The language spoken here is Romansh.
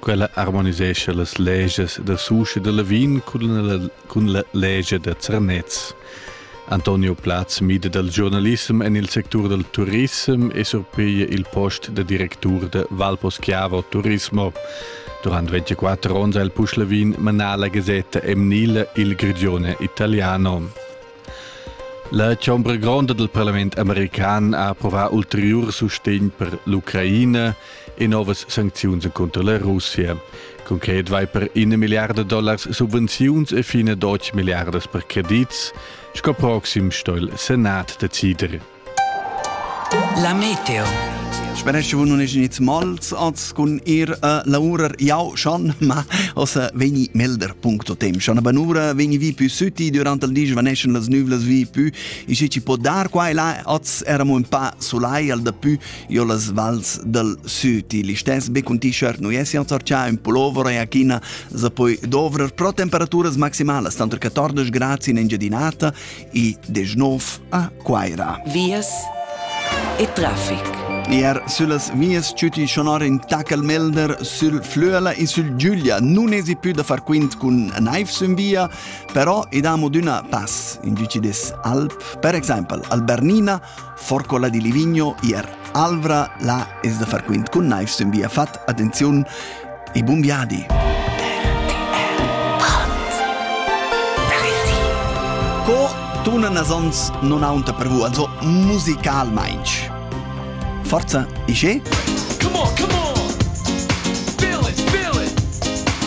Quella harmonisescha las legias da Susch e da Lavin cun la, cun la legia da Zernez. Antonio Platz mida dal giornalissem en il sectur dal turism e surpiglia il post da directur da Valposchiavo Turismo. Durant 24 onns ha il Puschlavin manà la gasetta emnila Il Grigione Italiano. La chombra gronda dal parlament american ha approvà ulteriur sustegn per l'Ucraina e novas sancziuns cunter la Russia. Concret vai per ina milliarda dollars subvenziuns e fine 12 milliardas per credits, sco proxim sto il Senat decider. La meteo. Speresce nun es gnit mals az cun ir a laurer jau schon, ma ossa vegni melder.tem. Schon a Banura vegni vi pü sütti durant il di svaneschan las nüvlas vi pü e se ci po dar qua e là az eramo un pa sulai al da pü io las vals dal süti. L'istess be cun t-shirt nu esi al sorcià un pullover e a china za poi dovrer pro temperaturas maximalas tanter 14 gradi in Engiadinata e 19 a Quaira. Vias e traffic. Er sulas vias ciuti sonor in Tacalmelder, sul Flöla e sul Giulia non esi più da far quint cun naiv sün via, però idamo d'una pass in giuci des Alp, per exempel al Bernina Forcola di Livigno ier Alvra la es da far quint cun naivs in via fat attenziun e bun viadi. Co tuna nasons non aunta per vu also musicalmainch. Forza, isce? Come on, come on! Feel it, feel it!